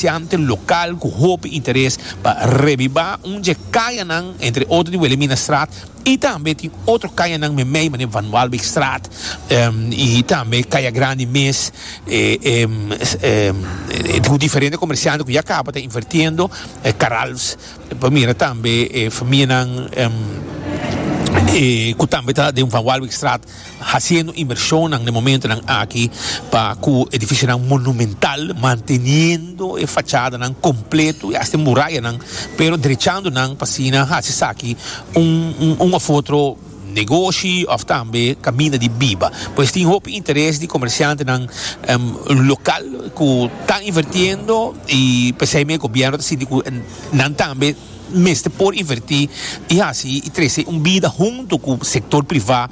comerciante local cu hopi interes pa reviva un dje cayanan entre otro di Wilhelminastraat y tambe tin otro cayanan meimei manera Van Waalbeekstraat y tambe Caya Grande mes cu diferente comerciante cu ya caba ta invirtiendo Caralfs pa mira tambe familianan cu tambe ta den Van Waalbeekstraat Hasiendo inversionnan na e momentonan aki pa cu edificionan monumental, manteniendo e fachadanan completo y hasta e murayanan, pero drechando nan pa asina haci esaki un un of otro negoshi of tambe caminda di biba. Pues tin hopi interes di comerciantenan local cu ta invertiendo y p'esey mi e gobierno ta sinti cu nan tambe. mester por invertí i hasi i trese un bida huntu ku sektor privá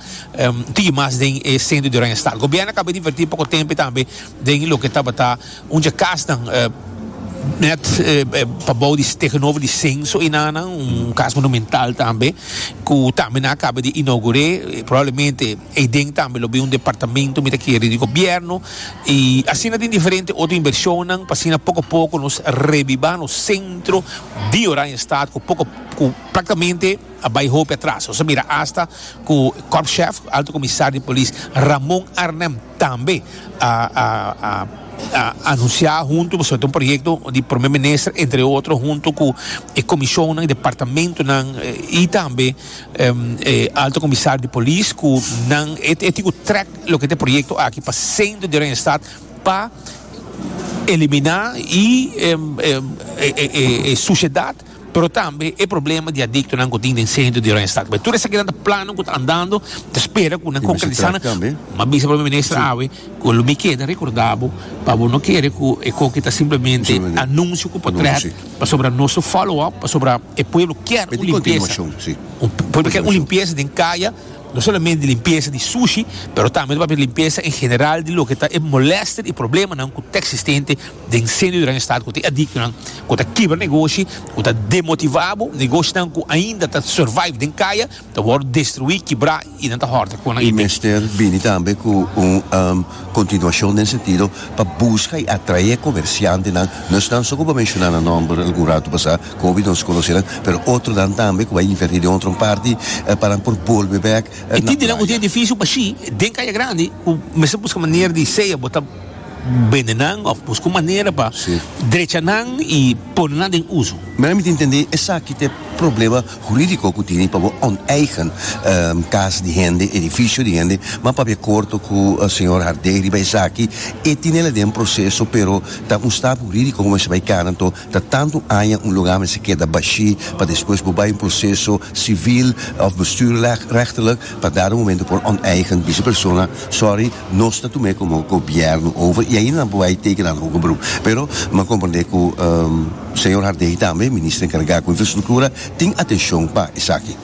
tigin mas den e send'e di Oranje Stal. Gobièrnu a kaba di invertí poko tempe tambe den loke tabata un dje kasnan nèt pa bou di tegenover di Senso i Nana, un kas monumental tambe ku tambe nan a kaba di inaugur'é, probablemente. Ei den tambe lo bin un departamento mi ta kere di gobierno y asina tin diferente otro inversionnan pa asina poco poco nos rebiba nos centro di Oranjestad cu poco cu practicamente a bay hopi atras. Nos a mira hasta cu Korpschef, Alto Comisar di Polis, Ramon Arnhem tambe a a a a anuncia hunto pasobra ta un proyecto di Prome Minister entre otro hunto cu e comisionnan y departamentonan y tambe em, e alto comisar di polis cu nan e, e tin cu trek loke ta e proyecto aki pa centro di Oranje Stad pa elimina y em, em, e, e, e, e suciedad pero tambe e problema di adictonan cu tin den centro di Oranje Stad. Cu tur esakinan ta planan cu ta andando, ta spera cu nan Y mester concretisa trek nan. tambe. Ma bisa Prome Minister Sí. awe cu lo mi keda recordabo pa bo no kere cu e coki ta simplemente Simplemente anuncio cu por trek anuncio, sí. Pasobra nos lo follow up, pasobra e pueblo kier un limpieza, un pueblo kier un limpieza den kaya, no solamente limpieza di sushi, pero tambe ta papia limpieza en general di loke ta e molester y problemanan cu ta existente den seno di nan estado, cu ta e adictonan, cu ta kibra negoshi, cu ta demotiva bo, negoshnan cu ainda ta survive den kaya. Ta wòrdu destruí, kibrá i nan ta hòrta ku nan e mester bini tambe ku un kontinuashon den sentido pa buska i atraé e komersiantenan, no esnan so ku bo menshoná nan nòmber algun ratu pasá ku hopi nos konosé nan, pero otronan tambe ku bai invertí den otro parti pa nan por bolbe bèk na playa. E tin di nan ku tin edifisio bashí den Kaya Grandi ku mester buska manera di sea bo ta bende nan òf buska un manera pa drecha nan i pone nan den uso. Mira mi ta intendé esaki ta e problema. Huridico cu tene pa bo onteigen cas di hende, edificio di hende, ma papia corto cu señor Hardé riba esaki, e tinel aden proceso pero ta un stap huridico cu mester bay cana anto ta tanto aña un lugar mester keda bashi pa despues bo bay un proceso civil of bestuurlijk rechterlijk pa dado momento por onteigen bisa persona sorry nos ta tume como gobierno over y ayi nan bo bay teken algo hoger beroep pero me comprende cu. Señor Harday tambe, Minister Encarga cu Infrastructura, tin atencion pa esaki.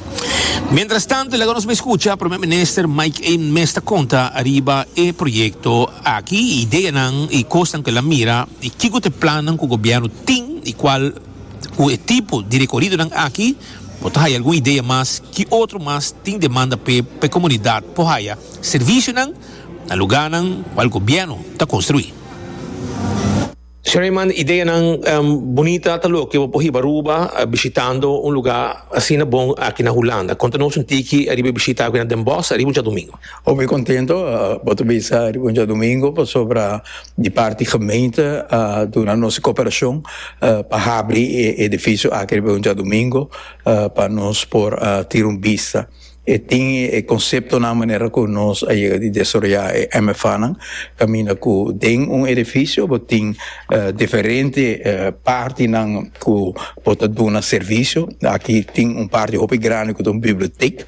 Mientrastanto, laga nos escucha Primer Minister Mike Ain mes ta conta ariba e proyecto aki, e ideanan y cosnan cu el a mira y kico ta e plannan cu Gobierno tin y cual cu e tipo di recoridonan aki por ta haya algun idea mas ki otro mas tin demanda p'e pa e comunidad por haya servicionan na lugarnan cual Gobierno ta construi. Sherry manda ideanan bunita ta loke bo por hiba Aruba bishitando un luga asina bon aki na Hulanda. Konta nos un tiki riba e bishita aki na Den Bosch ariba un djadumingu. Bo bai kontento bo ta bisa riba un djadumingu pasobra di parti gemeente a duna nos e koperashon pa habri e edifisio aki riba un djadumingu pa nos por tira un bista. E tin e conceptonan manera cu nos a yega di desaroya e MFAnan, caminda cu den un edificio bo tin diferente partinan cu bo ta duna servicio, aki tin un parti hopi grandi cu ta un bibliotek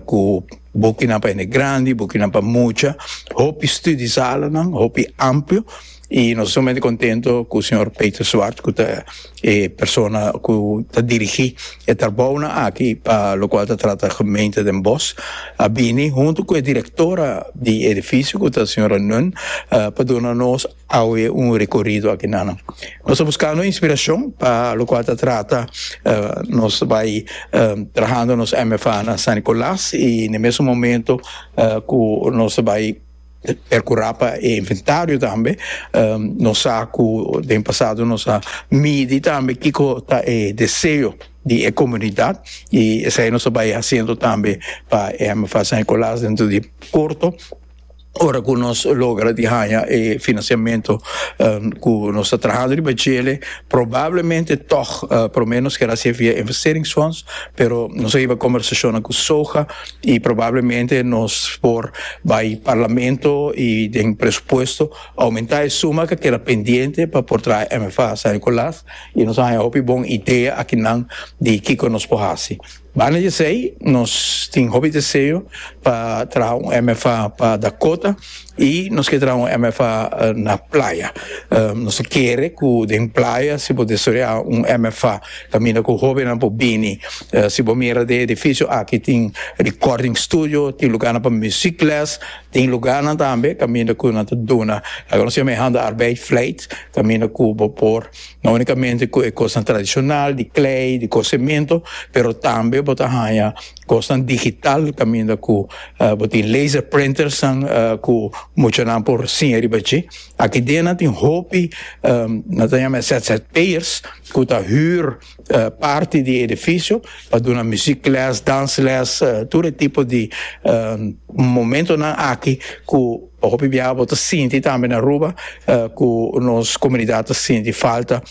cu bokinan pa hende grandi, bokinan pa mucha, hopi studiesalanan, hopi amplio. Y nos ta sumamente contento cu señor Peter Zwart cu ta e persona cu ta dirigi e tarbaonan aki pa locual ta trata gemeente Den Bosch a bini hunto cu e directora di edificio cu ta señora Nun pa duna nos awe un recorido aki nan. Nos ta buscando inspiracion pa locual ta trata nos bay trahando nos MFAnan San Nicolas y ne mesun momento cu nos ta bay E cura pa e inventario tambe nos sa cu den pasado nos a midi tambe kico ta e deseo di e comunidad y esai nos a bay haciendo tambe pa MFA San Nicolas dentro di corto ora cu nos logra di haya e financiamento cu nos ta trahando riba djele probablemente tog prome nos keda haci via investeringsfonds pero nos a hiba conversacionnan cu soga y probablemente nos por bay Parlamento y den presupuesto aumenta e suma ke keda pendiente pa por traha MFA San Nicolas y nos a haya hopi bon idea akinan di kiko nos por haci. Banda di esey nos tin hopi deseo pa traha un MFA pa Dakota. Y nos ke traha un MFA na playa. Nos ta kere ku den playa si bo desarroya un MFA kaminda ku hóbennan por bini. Si bo mira den e edifisio aki tin recording studio, tin lugarnan pa muziek les, tin lugarnan tambe kaminda ku nan ta duna loke nos yama e hande arbeid vleit kaminda ku bo por no únikamente ku e kosnan tradishonal di klei, di kos sementu pero tambe bo ta haña Kosnan digital kaminda ku bo tin laser printersnan ku muchanan por siña riba dje. Aki dia nan tin hopi nan ta yama e ZZP'ers ku ta hür parti di e edifisio pa duna muziekles, dansles, tur e tipo di momentonan aki ku pa hopi biaha bo ta sinti tambe na Aruba ku nos komunidat ta sinti falta.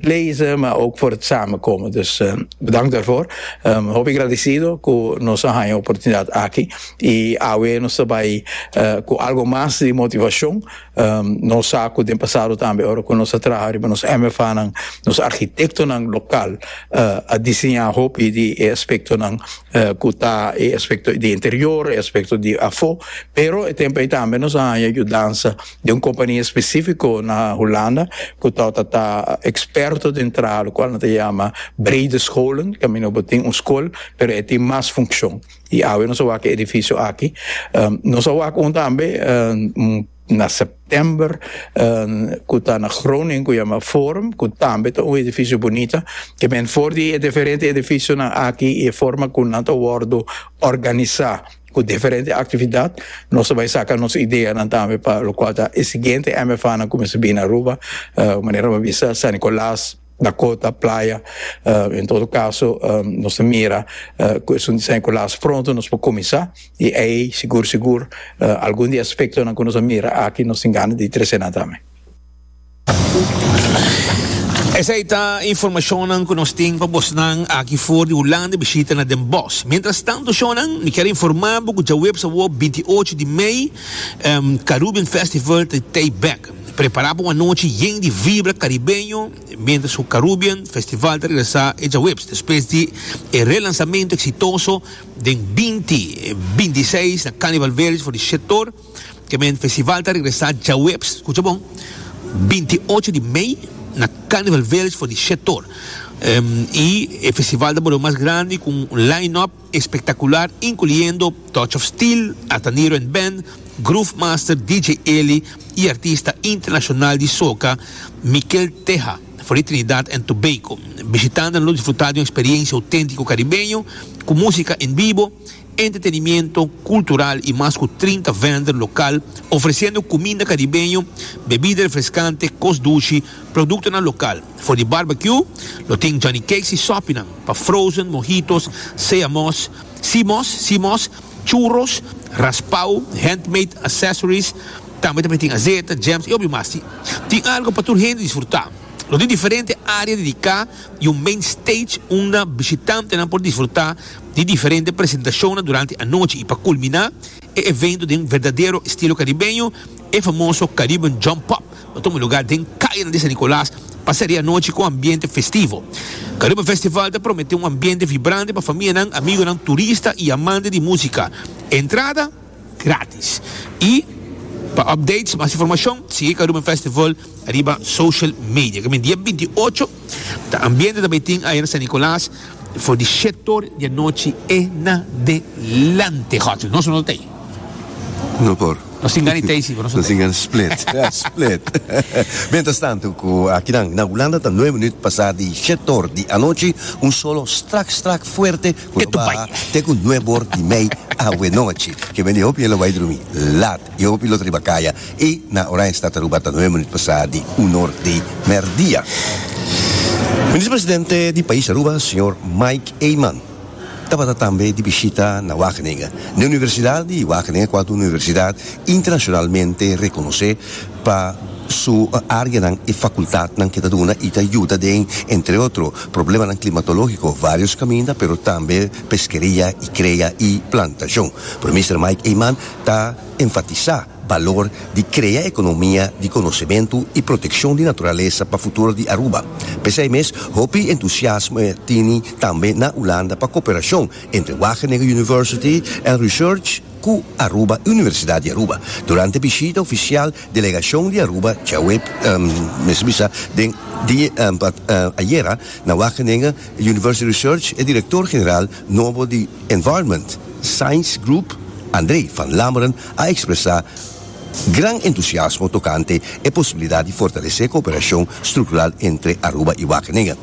lezen ma ook voor het samenkomen dus bedankt daarvoor hopi gradecido ku nos a haña oportunidad aki i awe nos ta bai ku algo mas di motivashon nos sa ku den pasado tambe ora ku nos a traha riba nos MFAnan nos arkitektonan lokal a diseñá hopi di e aspektonan ku ta e aspekto di interior e aspekto di afó pero e tempu ei tambe nos a haña yudansa di un kompania espesífiko na Hulanda ku ta tabata ta eksperto den traha lo kual nan ta yama brede scholen kaminda bo tin un skol pero e tin mas funkshon i awe nos a wak e edifisio aki nos a wak un tambe na sèptèmber ku ta na Groningen ku yama Forum ku tambe ta un edifisio bunita kimen for di e diferente edifisio aki i e forma ku nan ta wòrdu òrganisá. Cu diferente actividad nos ta bay saca nos ideanan tambe pa locual ta e siguiente MFAnan cu mester bini Aruba, uh, manera bo a bisa San Nicolas, Dakota, Playa, uh, en todo caso um nos ta mira uh cu esun di San Nicolas pronto nos por cuminsa y ey sigur sigur uh algun di e aspectonan cu nos a mira aki nos tin gana di trecenan tambe. Esei ta informashonnan ku nos tin pa bosnan aki for di Hulanda bishita na den bos. Mientrastantu shonnan, mi kier informá bo ku djaweps awor binti ocho di mei Carubbean Festival ta tei bek. Prepará pa un anochi yen di vibra karibeño mientras ku Carubbean Festival ta regresá e djaweps despues di e relansamento eksitoso den binti binti seis na Carnival Village for di Shetor. Kemen Festival ta regresa djaweps, kucha bon, binti ocho di mei na Carnival Village for di Shetor. I e festival ta bolo mas grandi ku un line-up espektakular inkluyendo Touch of Steel, Ataniro and Band, Groove Master DJ Eli i artista internashonal di soca Mikel Teja for di Trinidad and Tobago. Bishitantenan lo disfruta di un eksperiensia oténtiko karibeño ku músika en bibo, Entretenimiento cultural y mas cu trinta vender local ofreciendo cuminda caribeño, bebida refrescante, cos dushi, productonan local. For di barbecue lo tin Johnny Cakes y sopinan pa frozen, mojitos, seamos, seamos, seamos, churros, raspao, handmade accessories, tambe ta tin azeta, jams y hopi mas. Tin tin algo pa tur hende disfruta. Lo tin diferente area dedica y un main stage unda bishitantenan por disfruta. di diferente presentashonnan durante anochi i pa kulminá e evento den verdadero estilo karibeño, e famoso Caribbean Jump Up lo tuma lugá den kayanan di San Nikolas pasá di anochi ku ambiente festivo. Karuba Festival ta prometé un ambiente vibrante pa famianan, amigonan, turista i amante di músika. Entrada gratis. I pa updates, mas informashon, sigui Karuba Festival riba social media kaminda dia binti ocho ta ambiente ta bay tin ayer San Nicolas for di shet or di anochi e nadelante hotel nos no ta tay No por. nos tin gana di tay si pero nos no Nos ta tin gana split. split. Mientras tanto cu akinan na Hulanda ta nueve minuut pasa di shet or di anochi un solo strak strak fuerte cu lo baha te cu nueve or di mei awe nochi. Kiben di hopi e lo bay drumi lat. y hopi lo ta riba kaya y na Oranjestad Aruba ta nueve minuut pasa di un or di merdia. Minister Presidente di pais Aruba, señor Mike Eman, tabata tambe di bishita na Wageningen, na Universidad di Wageningen cual ta un universidad internacionalmente reconoce pa su areanan y facultadnan ke ta duna y ta yuda den, entre otro, problemanan climatologico, varios caminda, pero tambe peskeria y crea y plantacion. Pero Minister Mike Eman ta enfatisá balor di krea ekonomia di konosementu i protekshon di naturalesa pa futuro di Aruba. P'esei mes, hopi entusiasmo e tini tambe na Ulanda pa koperashon entre Wageningen University and Research ku Aruba Universidad di Aruba durante bishita ofisial delegashon di Aruba djaweps, mester bisa den ayera, na Wageningen University Research, e direktor general. Nobo di Environment Science Group, André van Lammeren a ekspresá gran entusiasmo tokante e posibilidat di fortalesé kooperashon struktural entre Aruba i Wageningen.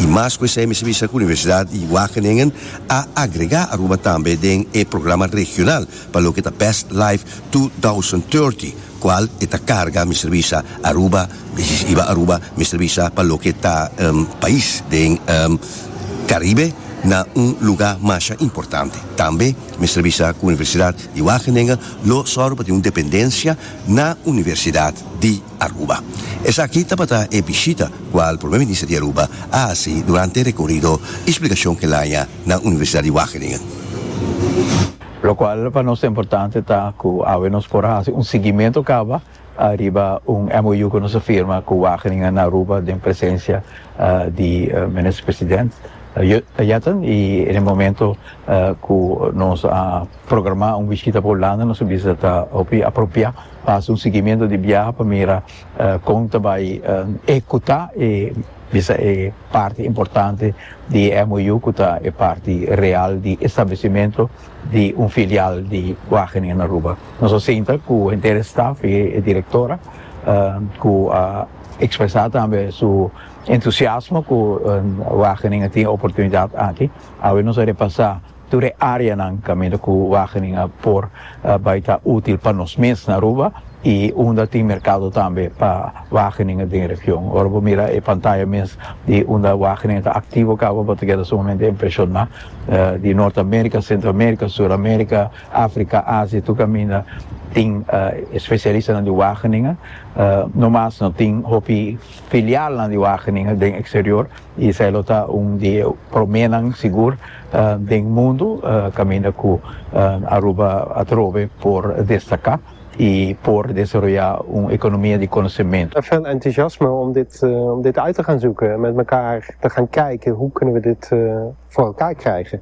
I mas ku esei mi sabisa ku Universidat di Wageningen a agregá Aruba tambe den e programa regional pa loke ta Best Life 2030, cual e ta carga mester bisa Aruba y si iba Aruba mester bisa pa loke ta pais den Caribe na un luga masha importante tambe mester bisa cu Universidad di Wageningen lo zorgo pa tin un dependencia na Universidad di Aruba esaki tabata e bishita cual Primer Minister di Aruba a haci durante e recorrido y splicacion cu el haña na Universidad di Wageningen. Locual pa nos ta importante ta cu awe nos por haci un siguiemento caba ariba un MOU cu nos a firma cu Wageningen na Aruba den presencia di Minister President Yetten y en e momento cu nos a programa un bishita pa Hulanda nos a bisa ta hopi apropia pa haci un siguiemento di biaha pa mira Kon ta bai ehekutá e bisa e parti importante di e MOU ku ta e parti real di establesimentu di un filial di Wageningen na Aruba? Nos a sinta ku henter e staf i e direktora ku a ekspresá tambe su entusiasmo ku Wageningen tin e oportunidat aki. Awe nos a repasá. Tur e áreanan kaminda ku Wageningen a por bai ta útil pa nos mes na Aruba i unda tin merkado tambe pa Wageningen den e region. Ora bo mira e pantaya mes di unda Wageningen ta aktivo kaba bo ta keda sumamente impreshoná di Nort Amérika, Sentro Amérika, Sur Amérika, Afrika, Asia tur kaminda tin e spesialistanan di Wageningen. No mas no tin hopi filialnan di Wageningen den eksterior i esei lo ta un di e proménan sigur den mundu kaminda ku Aruba atrobe por destaká i por desaroyá un ekonomia di konosementu. Vèl entusiasme om dit uit te gan zoeken en met mekaar te gan kijken hoe kunnen we dit voor elkaar krijgen.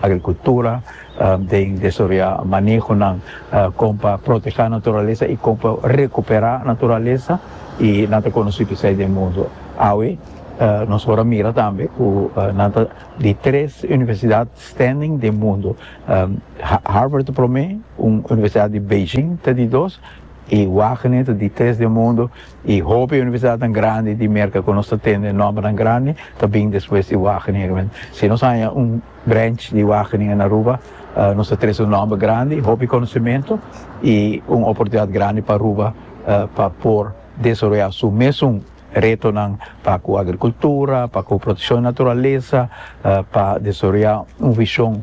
Agrikultura den desaroyá manehonan kon pa protehá naturalesa i kon pa rekuperá naturalesa i nan ta konosí p'esei den mundu. Awe nos por a mira tambe ku nan ta di tres universidat standing den mundu. Harvard ta promé, un universidat di Beijing ta di dos i Wagene ta di tres den mundu. Y hopi universidadnan grandi di Merca cu nos ta tende nombernan grandi ta bin despues di Wageningen. Bueno, si nos haña un branch di Wageningen na Aruba, nos ta trece un nomber grandi, hopi conocemento y un oportunidad grandi pa Aruba pa por desaroya su mesun retonan pa cu agricultura, pa cu proteccion di naturaleza, pa desaroya un vision.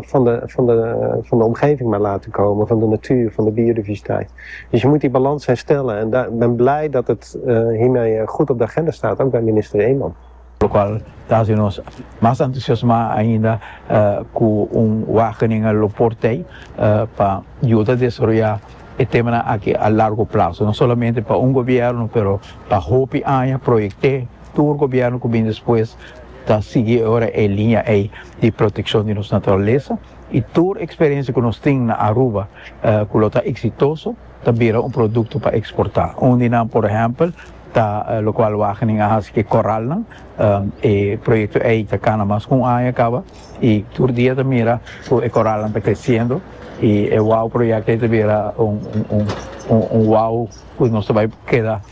van de van de van de omgeving maar laten komen van de natuur van de biodiversiteit dus je moet die balans herstellen en da ben blij dat het hiermee goed op de agenda staat ook bij minister Eman. Locual ta haci nos mas entusiasma ainda cu un Wageningen lo por t'ei pa yuda desaroya e temanan aki a largo plazo, no solamente pa un gobierno pero pa hopi aña proyect'e. Tur gobièrnu ku bin despues ta sigui ora e liña ei di protekshon di nos naturalesa i tur eksperensia ku nos tin na Aruba ku lo ta eksitoso ta bira un produkto pa eksportá. Un di nan, por ehèmpel, ta lokual Wageningen a hasi ku e koralnan. E proyekto ei ta kana mas ku un aña kaba i tur dia ta mira ku e koralnan ta kresiendo i e wow proyekto ei ta bira un wow ku nos ta bai keda.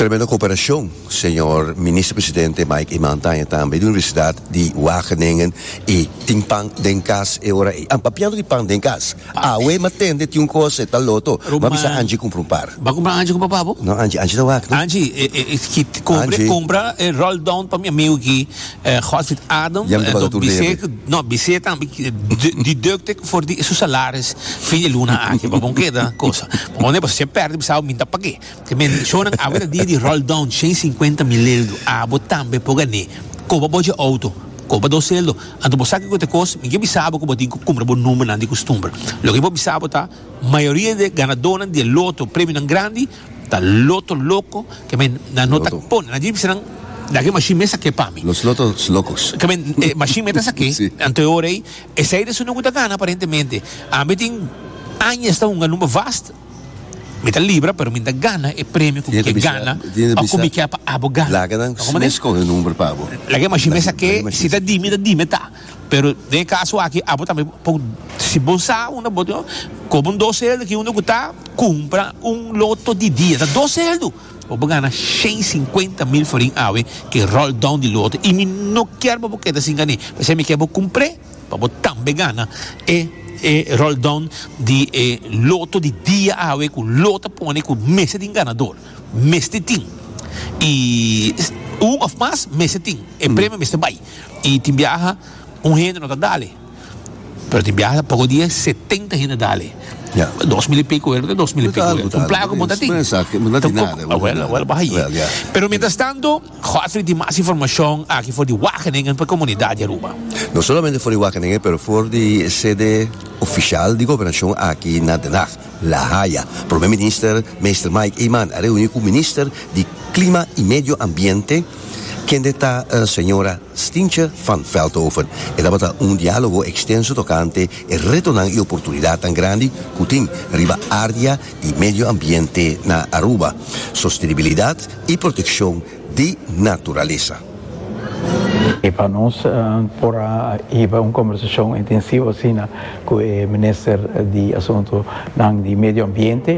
Tremendo cooperacion, Señor Minister Presidente Mike Eman Taña tambe di Universidad di Wageningen y tin pan den cas e ora ey. An papiando di pan den cas. Awe ma tende tin un cos e ta loto. Ma bisa Angie cumpra un par. Ba cumpra Angie cu papa bo? No Angie, Angie ta wak no. Angie, e ki cobre compra e roll down pa mi amigo aki Godfried Adam bis'é no bis'é tambe deducte for di su salaris fin di luna aki pa bon keda cosa pone bo se perde bisa bo minta pake te mencionan awe ta dia di roll down shen cincuenta mileldu abo tambe por gane koba bo dje auto koba dos celdo anto bo sa kiko te kos mi ke bisa bo ku bo tin ku kumpra bo number nan di kustumber loke mi por bisa bo ta mayoria di ganador nan di loto premio nan grandi Ta loto loco ke men nan no ta pone nan gypsy nan da ke machine mesa ke pami Los lotos locos. ke men e machine meta sa ke Sí. anto e ora ei esei de su no ku ta gana aparentemente ami tin aña esta hunga number vast mi ta libra pero mi no ta gana e premio ku mi ke gana o ku mi ke pa abo gana Laga nan ta kòmande mes kohe number pa abo. la ke machine mesa ke si ta di mi ta di me ta. Pero den e kaso aki abo tambe por si bo sa unda bo tin koba un dos helder ki unda ku ta kumpra un loto di dia ta dos helder bo por gana shen sinkuenta mil forin awe ku e roll down di loto i mi no kier pa bo keda sin gane pasobra mi kier bo kumpr'e pa bo tambe gana e e roll down di e loto di dia awe ku lo ta pone ku mester tin ganador mester tin i un of mas mester tin e premio mester bai. y tin biaha un hende no ta dale pero tin biaha ta poco dia setenta hende dale dos mil y pico wer dos mil y pico wer un plaga como ta tin awel awel baha ayi pero mientras tanto Godfrey tin mas informacion aki for di Wageningen pa e comunidad di Aruba. No solamente for di Wageningen pero for di e sede oficial di gobernacion aki na Den Haag, La Haya. Prome minister Meester Mike Eman a reuni cu minister di Clima y Medio Ambiente, Kende ta Señora Stientje van Veldhoven? E tabata un diálogo ekstenso tokante e retonan i oportunidatnan grandi ku tin riba área di medio ambiente na Aruba, sostenibilidat i protekshon di naturalesa. I pa nos por a hiba un kombersashon intensivo asina ku e Minister di Asuntunan di Medio Ambiente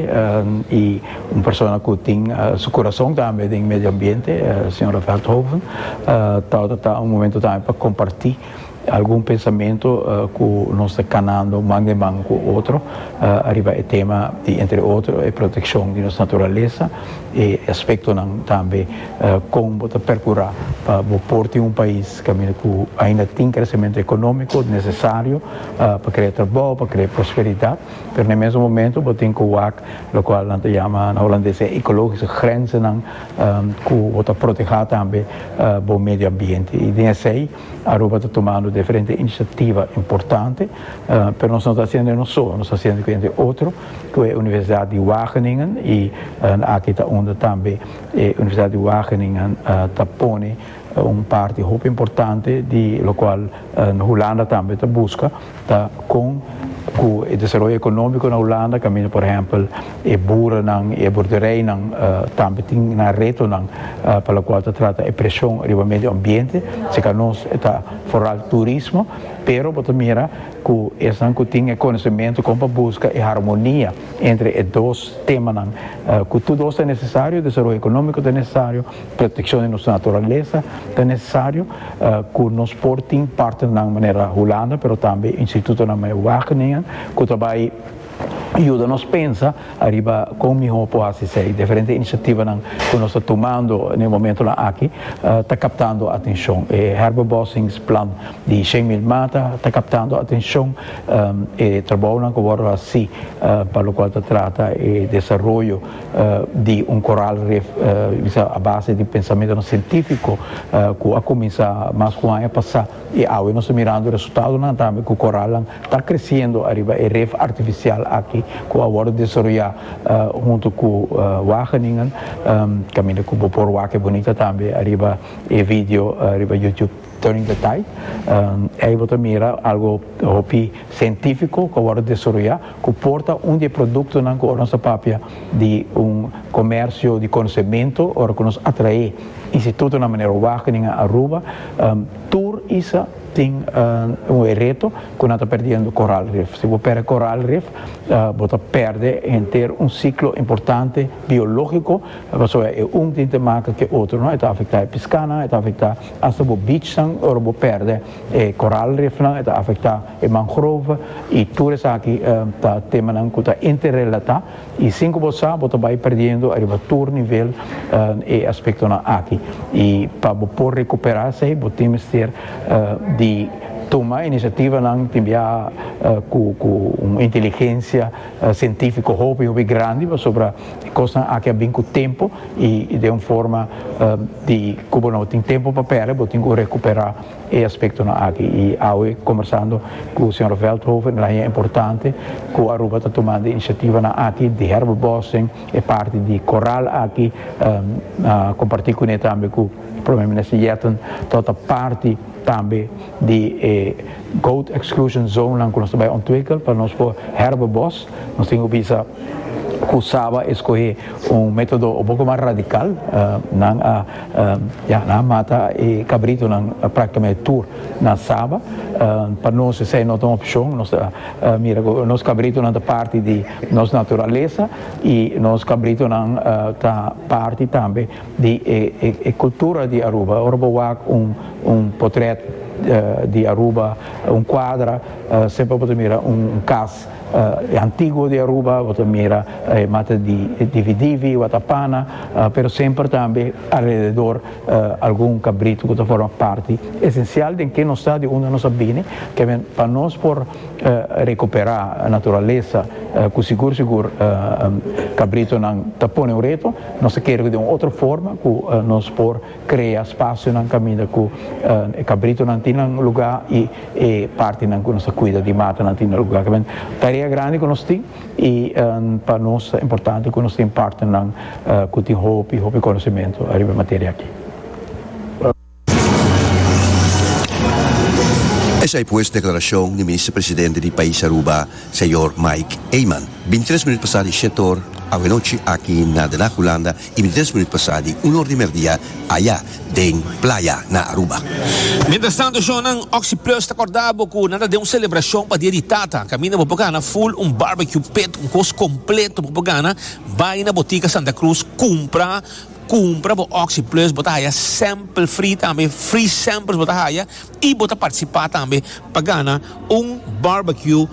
i. Un persona cu tin su corazon tambe den medio ambiente, Sra. Veldhoven, ta ora ta un momento tambe pa comparti algun pensamento cu nos ta canando man den man cu otro ariba e tema di entre otro e proteccion di nos naturalesa y e aspectonan tambe con bo ta percura pa bo por tin un pais caminda cu ainda tin crecemento economico necesario pa crea trabao, pa crea prosperidad. Pero na e mesun momentu bo tin ku wak lokual nan ta yama na holandes e ekológico grenzennan ku bo ta protehá tambe bo medio ambiente i den esei Aruba ta tumando diferente inisiativa importante pero nos no ta hasiendo e nos so nos ta hasiendo ku hende otro ku e universidat di Wageningen i aki ta unda tambe e universidat di Wageningen ta pone un parti hopi importante di lokual Hulanda tambe ta buska. ta con cu e desaroyo economico na Hulanda caminda por ehempel e boerennan y e boerderijnan tambe tin nan retonan pa locual ta trata e presion riba medio ambiente seca nos ta foral turismo pero bo ta mira cu esnan cu tin e conocemento con pa busca e harmonia entre e dos temanan cu tur dos ta necesario desaroyo economico ta necesario Protekshon di nos naturalesa ta nesesario ku nos por tin partnernan manera Hulanda pero tambe institutonan mei Wageningen ku ta bai yuda nos pensa ariba kon mihó por hasi esei. Diferente inisiativanan ku nos ta tumando den e momentunan aki ta kaptando atenshon. E herbebossingsplan di shen mil mata ta kaptando atenshon. E trabounan ku a wòrdu hasi pa lokual ta trata e desaroyo di un koral ref bisa a base di pensamentonan sientífiko ku a kuminsá mas ku un aña pasá i awe nos ta mirando resultadonan tambe ku koralnan ta kresiendo ariba e ref artifisial aki ku a wòrdu desaroyá huntu ku Wageningen kaminda ku bo por wak e bunita tambe ariba e video riba YouTube. During the time, ey bo ta mira algo hopi cientifico cu a wordo desaroya cu por ta un di e productonan cu ora nos ta papia di un comercio di conocemento ora cu nos atrae institutonan manera Wageningen en Aruba, tur isa tin un e reto cu nan ta perdiendo coral reef. Si bo perde coral reef bo ta perde henter un ciclo importante biologico pasobra e un tin te maka cu e otro no, e ta afecta e piscanan, e ta afecta. Hasta bo beachnan ora bo perde e coral reefnan e ta afecta e mangrove y tur esaki ta temanan cu ta interrelata y sin cu bo sa bo ta bay perdiendo ariba tur nivel e aspectonan aki y pa bo por recupera esey bo tin mester di tuma iniciativanan tin bia cu un inteligencia cientifico hopi hopi grandi pasobra E kosnan aki a bin ku tempu i den un forma di ku bo no tin tempu pa pèrdè bo tin ku rekuperá e aspektonan aki. I awe kombersando ku señor Veldhoven el a haña importante ku Aruba ta tumando e inisiativanan aki di herbebossing, e parti di koral aki a kompartí kuné tambe ku Prome Minister Yetten tot a parti tambe di e goat exclusion zonenan ku nos ta bai ontwikkel pa nos por herbebos. Nos tin cu bisa cu Saba e scoge un metodo un poco mas radical, nan a ya nan a mata e cabritonan practicamente tur na Saba, pa nos esey no ta un opcion, nos ta mira cu nos cabritonan ta parti di nos naturalesa y nos cabritonan ta parti tambe di e cultura di Aruba, ora bo wak un potret di Aruba, un cuadra, semper bo ta mira un cas. E antiguo di Aruba bo ta mira e mata di dividivi, watapana, pero semper tambe alrededor algun kabritu ku ta forma parti esensial den ke nos ta, di unda nos a bini, kende pa nos por rekuperá naturalesa ku sigur sigur kabritunan ta pone un reto, nos ta kere ku den un otro forma ku nos por. Krea spasionan kaminda ku e kabritonan tin nan lugá i e partinan ku nos ta kuida di matanan tin nan lugá. Kibien tarea grandi ku nos tin i pa nos ta importante ku nos tin partnernan ku tin hopi hopi konosementu ariba e materia aki. Esei pues deklarashon di Minister Presidente di pais Aruba, Señor Mike Eman, bintres minut pasá di shet or awenochi aki na Den Haag Hulanda y midis minuut pasa di una or di merdia aya den playa na Aruba. Mientras tanto Jonan, Oxi Plus ta corda bo cu nan ta den un celebracion pa dia di tata. Caminda bo por gana full un barbecue pit un cos completo bo por gana, bay na Botica Santa Cruz cumpra, cumpra bo Oxi Plus bo ta haya sample free tambe free samples bo ta haya. y bo ta participa tambe pa gana un barbecue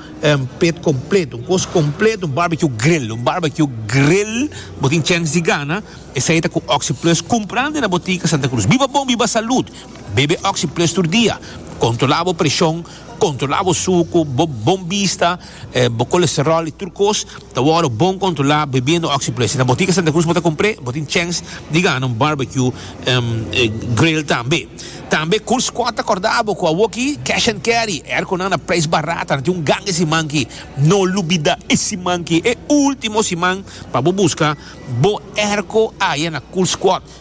pet completo un cos completo un barbecue grill un barbecue grill bo tin chance di gana esai ta cu oxi plus cumprandi na botica Santa Cruz biba bon biba salud bebe oxi plus tur dia controla bo presion controla bo sucu bo bon bista. Bo kolesteròl i tur kos ta wòrdu bon kontrolá bebiendo Oxyplus. Na botika Santa Cruz bo ta kumpr'é, bo tin chèns di gana un barbecue grill tambe. Tambe Cool Squad ta kòrda bo ku awoki Cash and Carry e airkonan na preis barat a na tin un ganga e siman aki. No lubida e siman aki, e último siman pa bo buska bo airko aya na Cool Squad.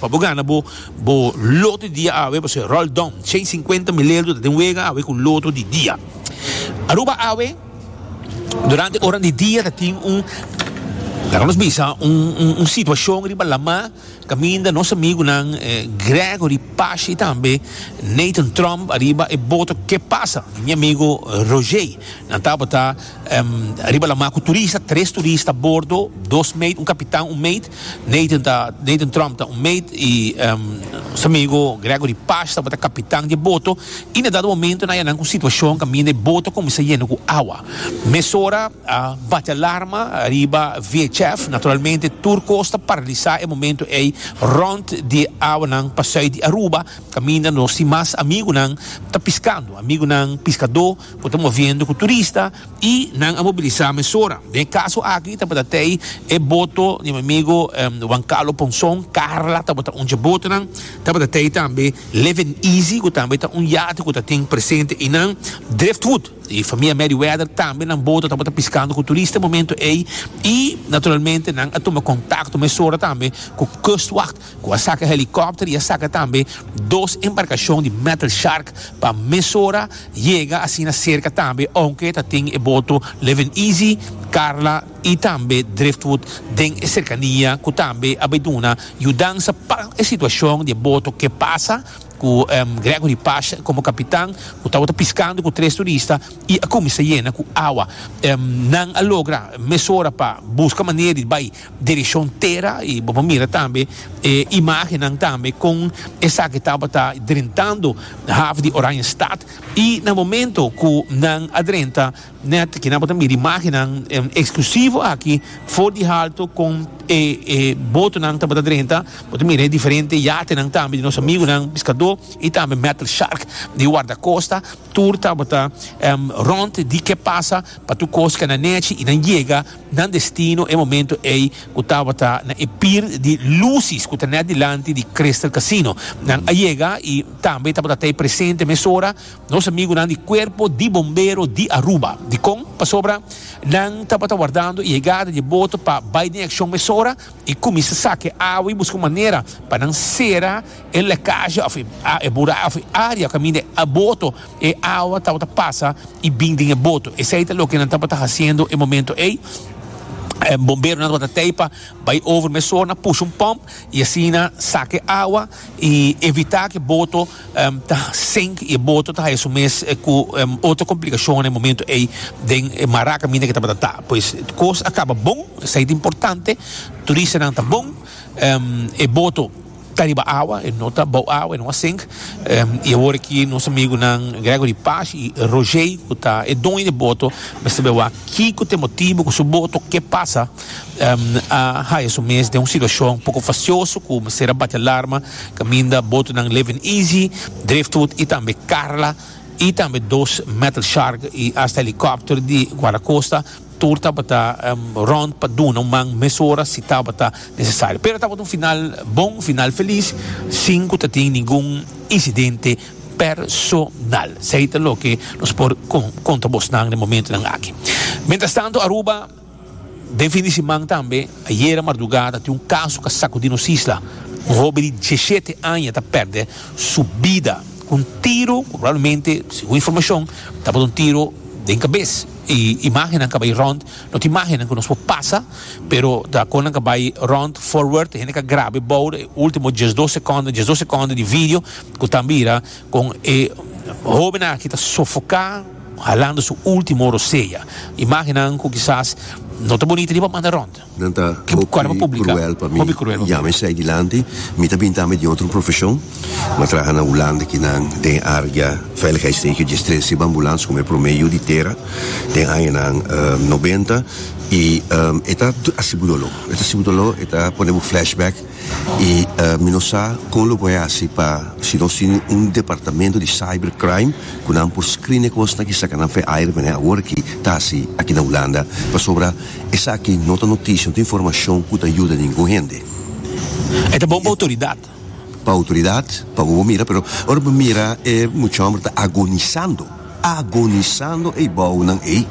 Pa bo gana bo bo loto di dia awe bo ser Roald Daum shei sinkuenta milerdo ta den wega awe ku loto di dia. Aruba awe durante oran di dia ta tin un laga nos bisa un un situashon riba lama kaminda nos amigunan Gregory Pashi tambe Nathan Trump ariba e boto ke pasa mi amigo Roger nan tabata riba lama ku turista tres turista a bordo dos meid un kapitan un meid. Nathan ta Nathan Trump ta un meit y nos amigo Gregory Pash tabata capitan di e boto y na dado momento nan yanan cu situacion caminda e boto cuminsa yena cu awa mesora a bati alarma riba VHF naturalmente tur cos ta paralisa e momento ey rond di awanan pasui di Aruba caminda nos tin mas amigunan ta piscando amigunan piscado cu ta moviendo cu turista I nan a mobilisá mesora. Den e kaso aki tabata te ei e boto di mi amigo Juan Carlo Ponson, Carla, tabata un dje botonan. Tabata te ei tambe Living Easy ku tambe ta un yate ku ta tin presente einan. Driftwood di famia Merryweather tambe nan boto tabata piskando ku turista momento ei. I naturalmente nan a tuma kontakto mesora tambe ku Kustwacht. ku a saka helikòpter i a saka tambe dos embarkashon di Metal Shark pa mesora yega asina serka tambe ounke ta tin e boto Livin' Easy, Karla i tambe Driftwood den e serkania ku tambe a bai duna yudansa pa e situashon di e boto ke pasa ku Gregory Pash komo kapitan ku tabata piskando ku tres turista i a kuminsá yena ku awa. Nan a logra mesora pa buska manera di bai. Dirishon Tera i bo por mira tambe e imagennan tambe kon esaki tabata drentando haf di Oranjestad i na momento ku nan a drenta nèt ke nan por ta mira imagennan eksklusivo aki for di haltu kon e e botonan tabata drenta bo ta mira e diferente yatenan tambe di nos amigunan piskadó i tambe Metal Shark di Wardakosta tur tabata rònt di ke pasa pa tur kos ke a na nèchi i nan yega. Nan destino e momento ey cu tabata na e pir di lusis cu ta net dilanti di Crystal Casino. Nan a yega y tambe tabata tey presente mesora nos amigunan di Cuerpo di Bombero di Aruba. Dicon? Pasobra nan tabata wardando e yegada dje boto pa bay den accion mesora. I kuminsa sake awa i buska un manera pa nan sera e lekashi òf e bura òf e área kaminda e boto e awa tabata pasa i bin den e boto. Esei ta loke nan tabata hasiendo e momento ei. Bomberonan tabata tei pa bai over mesona, pusha un pòmp i asina saka e awa. y evita cu e boto ta sink y e boto ta haya su mes cu otro complicaciones den e momento ey den e mara caminda que tabata ta pues cos a caba bon esey ta importante turistanan ta bon e boto ta riba awa e no ta bou awa e no a sink y awor aki nos amigunan Gregory Pash y Roger cu ta e doño di e boto mester averigua kico ta e motibo cu su boto ke pasa. a haya su mes den un situashon poko fasioso ku mester a bati alarma kaminda botonan Livin' Easy, Driftwood i tambe Karla i tambe dos Metal Shark i asta helikòpter di Guardakosta tur tabata rònt pa duna un man mesora si tabata nesesario. Pero tabata un final bon, un final felis sin ku ta tin ningun insidente personal. Esei ta loke nos por konta bosnan den momentunan aki. Mientras tanto Aruba. Den fin di siman tambe, ayera mardugada tin un kaso ka sakudi nos isla. Un hobe di diesshete aña ta pèrdè su bida ku un tiro ku probablemente, segun informashon, tabata un tiro den kabes. E imagennan ka bai rònt, no ta imagennan ku nos por pasa, pero ta kon nan ka bai rònt forward, hende ka grab'e bou e último diesdos sekònda, diesdos sekònda di video ku ta mira Con e hobennan aki ta sofoca halando su ultimo rosea. Imagennan cu kisas no ta bonito ni pa manda rond. Nan ta hopi cruel pa mi. Ya mi esei di lanti, mi ta binta ami di otro profesion. Mi a traha na Hulanda aki nan den e area veiligheidsregio dje stres riba ambulans como e prome yu di tera den añanan nobenta y e ta sibu dolo, e ta sibu dolo, e ta pone bo flashback. y mi no sa con lo por haci pa si nos tin un departamento di cyber crime cu nan por screen e cosnan kisa ca nan feaire menen awor aki ta haci aki na Hulanda pasobra esaki no ta noticia no ta informacion cu ta yuda ningun hende. E ta bon pa autoridad. Pa autoridad pa bo bo mira pero ora bo mira e mucha homber ta agonizando. agonisando e bounan ei.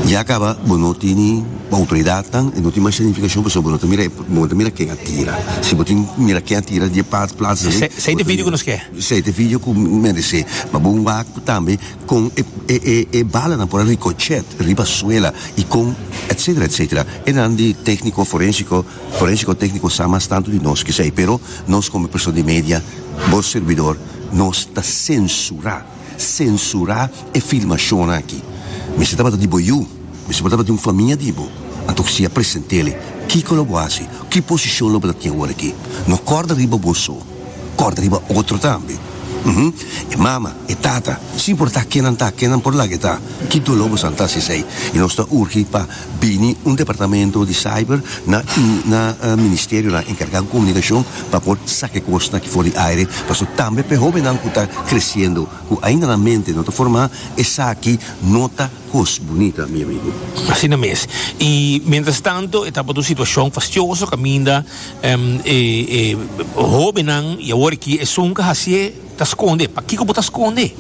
Ya caba bo no tin autoridadnan e no tin mas significacion pasobra bo no ta mira e bo no ta mira ken a tira. Si bo tin mira ken a tira di e pat plaza dei. Sei te video cu nos ke. Sei te video cu merece. Ma bo wak tambe con e e e balanan por a ricochet riba suela y con etcetera etcetera. Enan di tecnico forensico forensico tecnico sa mas tanto di nos. Kisei pero nos como persona di media bo servidor nos ta censura. Sensura e filmashonnan aki. Mester tabata di bo yu. Mester bo tabata di un famia di bo. Anto ku si a presentele, kiko lo bo hasi? Ki posishon lo bo ta tin awor aki? No kòrda riba bo so. Kòrda riba otro tambe. Uhm. E mama, e tata, sin importá ke nan ta, ke nan por laga e ta, ki doló bo sa nan ta hasi esei. I nos ta urgi pa. bini un departamento di cyber na na ministerionan encarga cu comunicacion pa por saca e cosnan aki for di aire pasobra tambe pa e hobennan cu ta creciendo cu ainda nan mente no ta forma esaki no ta cos bunita mi amigo. Asina mes. Y mientras tanto e tabata un situacion fastioso caminda e hobennan y awor aki esun ca hacié. Ta skonde? Pakiko bo ta skonde?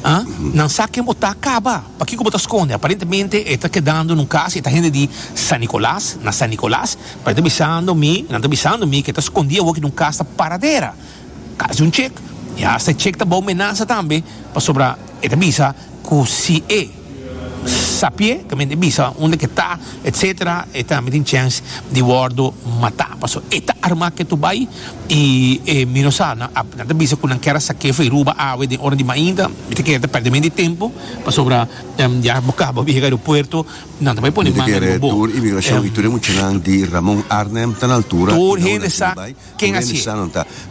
A? Nan sa ken bo ta, kaba. Pakiko bo ta skonde? Aparentemente e ta kedando na un kas, e ta hende di San Nicolas, na San Nicolas, pa e ta bisando mi, nan ta bisando mi, ke ta skondí awoki na un kas ta paradera, kas di un chek, i hasta e chek ta bou menansa tambe, pasobra e ta bisa, cu si e sapié caminda e bisa unda cu e ta etc. E tambe tin chance di wordo mata paso e ta arma ke tu bay y e mi no sa nan ap nan ta bisa cu nan kier a sa kefa y ruba awe den ora di mainta mi ta kere ta perde mente y tempo pasobra ya bo caba yega aeropuerto nan ta bay pone manga riba bo tur hende sa. Ken a hasié?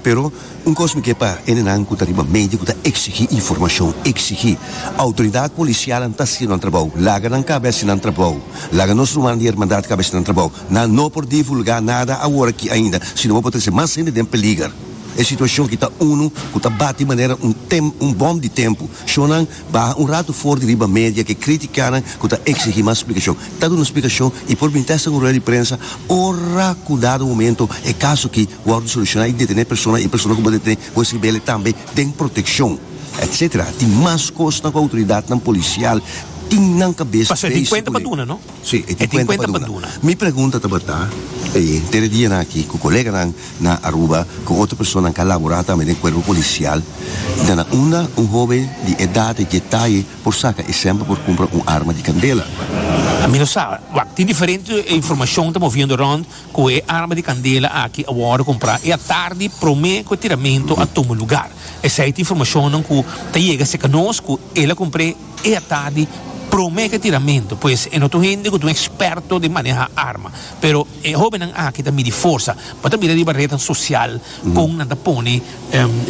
Pero un kos mi ke pa enenan ku ta riba medio ku ta eksigí informashon, eksigí. Outoridat polisialnan ta hasiendo nan trabou. Laga nan kabe hasi nan trabou. Laga nos rumannan di Hermandad kabe hasi nan trabou. Nan no por divulgá nada awor aki ainda, sino bo por trese mas hende den peliger. E situashon aki ta unu ku ta bati manera un tem, un bòm di tempu. Shonnan. Baha un ratu for di riba media ku e kritikanan ku ta eksigí mas splikashon. Ta duna splikashon i por binti hasta un rueda di prensa ora ku dado momento e kaso aki wòrdu solushoná i detené persona i persona ku por detené por esribele tambe den protekshon etc. Tin mas kosnan ku outoridatnan polisial tin nan kabes. Pa servi kuenta pa duna no. Si, e tin kuenta pa duna. Mi pregunta tabata, e inter e dianan aki ku koleganan na Aruba ku otro personanan ka laborá tambe den kuerpo polisial, ta na unda un hóben di edat di dje taye por saka esemplo por kumpra un arma di kandela? Mi no sa. Wak, tin diferente informashon ta moviendo rònt ku e arma di kandela aki a wòrdu kumprá e atardi promé ku e tiramentu a tuma lugar. Esei ta informashonnan ku ta yega serka nos ku el a kumpr'é. E a tardi prome ke tiramentu pues e no tu hende ku ta un eksperto den maneha arma pero e hobennan aki ta midi forsa bo ta mira riba redan sosial kon nan ta pone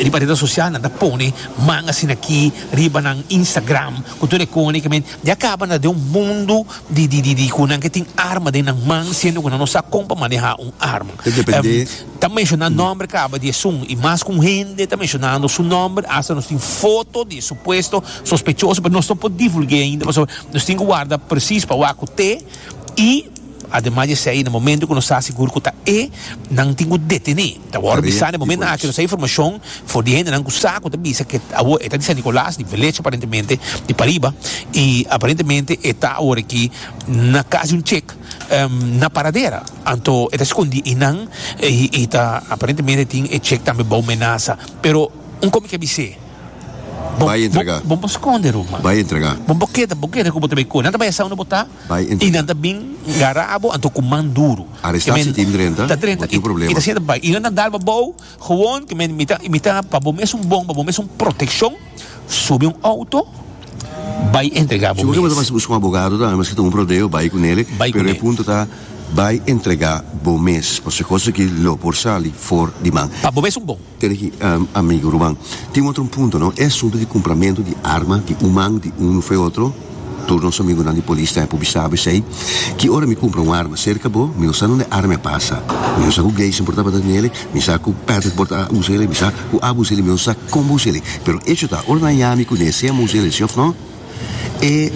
riba redan sosial nan ta pone man asina aki riba nan instagram ku tur e kone ke men ya kaba na den un mundu di di di ku nan ke tin arma den nan man siendo ku nan no sa kon pa maneha un arma. Ta menshona nòmber kaba di esun i mas ku un hende ta menshonando su nòmber. Asta nos tin foto di e supuesto sospechoso, pero nos no por divulg'é ainda pasobra nos tin ku warda presis pa wak ku te i ademas di esei na momento ku nos sa sigur ku ta e nan tin ku detené. Ta wòrdu bisa na e momento aki nos sa informashon for di hendenan ku sa ku ta bisa ku awor e ta di San Nicolas di Velecho aparentemente di pariba i aparentemente e ta awor aki na kasi un chek. na paradera anto e ta escondi i nan i ta aparentemente tin e check tambe bao menaza pero un comiki a bis'e Bai entrega bon bo sconde Ruma bai entrega bon bo keda bo keda cu bo ta bay coe nan ta bay esa unda bo ta bai entrega i nan ta bin gara abo anto cu man duro aresta si tin drenta motiu problema i ta siente bai i nan ta dalba bao Gewoon ke mi ta imitá pa bo mes un bon, pa bo mes un protekshon, subi un outo, bai entregá bo mes. Si bo ke manda pa buska un abogado ta, meske ta un rodeo, bai ku nele, pero e punto ta bai entregá bo mes, pasobra e kos aki lo por sali for di man. Pa bo mes un bon. Tene aki, amigu, ruman, tin otro un punto, no? E asuntu di kumpramentu di arma di un man, di un ufeotro. Tur nos amigunan di polis ta pubisá bo esei, Ki ora mi kumpra un arma serka bo, mi no sa nunde arma a pasa. Mi no sa ku Gleison por ta bata den ele, mi sa ku Patrick por ta usa ele, mi sa ku abo usa ele, mi no sa kon bo usa ele. Pero echo ta, ora nan yami kuné sea mi usa ele si òf no, e